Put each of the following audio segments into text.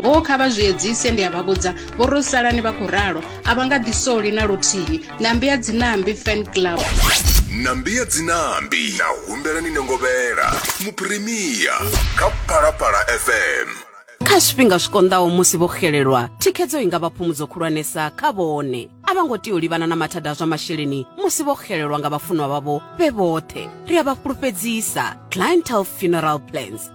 Hoo, kha vha zwi edzise! Ndi a vha vhudza, vho ro salani vha khou ralo, a vha nga ḓi soli na luthihi. Nambi ya Dzinambi Fan Club. Nambi ya Dzinambi na humbela ni nengovhela Muphirimiya kha Phalaphala FM. Kha zwifhinga zwi konḓaho musi vho xelelwa, thikhedzo i nga vha phumudzo khulwanesa kha vhone. A vha ngo tea u livhana na mathada a zwa masheleni musi vho xelelwa nga vhafunwa vhavho vhe vhoṱhe. Ri a vha fhulufhedzisa. Clientele Funeral Plans.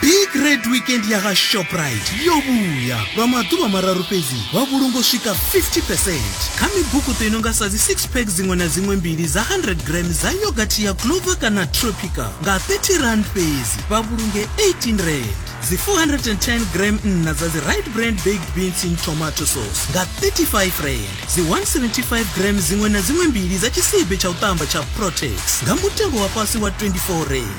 big red weekend ya vha shoprite yo vhuya lwa maḓuvha mararu fhedzi vha vhulungo swika 50 percent kha mibukuṱo i no nga sa dzi six pack dziṅwe na dziṅwe mbili dza 100 gram dza yogathi ya clover kana tropica nga 30 rand fhedzi vha vhulunge 18 rand dzi 410 gram nna dza dzi right brand baked beans in tomato sauce nga 35 rand dzi 175 gram dziṅwe na dziṅwe mbili dza tshisibe tsha u ṱamba tsha protex nga mutengo wa fhasi wa 24 rand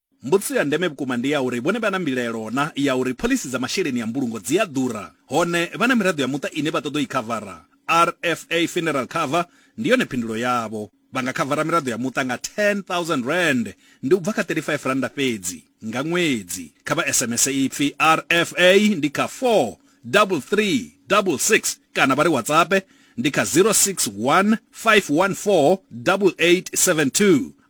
Mbudziso ya ndeme vhukuma ndi ya uri vhone vha na mbilaelo na ya uri phoḽisi dza masheleni a mbulungo dzi a ḓura, hone vha na miraḓo ya muṱa ine vha ṱoḓa u i khavara. RFA Funeral Cover ndi yone phindulo yavho. Vha nga khavara miraḓo ya muṱa nga R10,000, ndi u bva kha R35 fhedzi, nga ṅwedzi. Kha vha SMS ipfi RFA ndi kha 43366 kana vha ri WhatsAppe ndi kha 0615148872.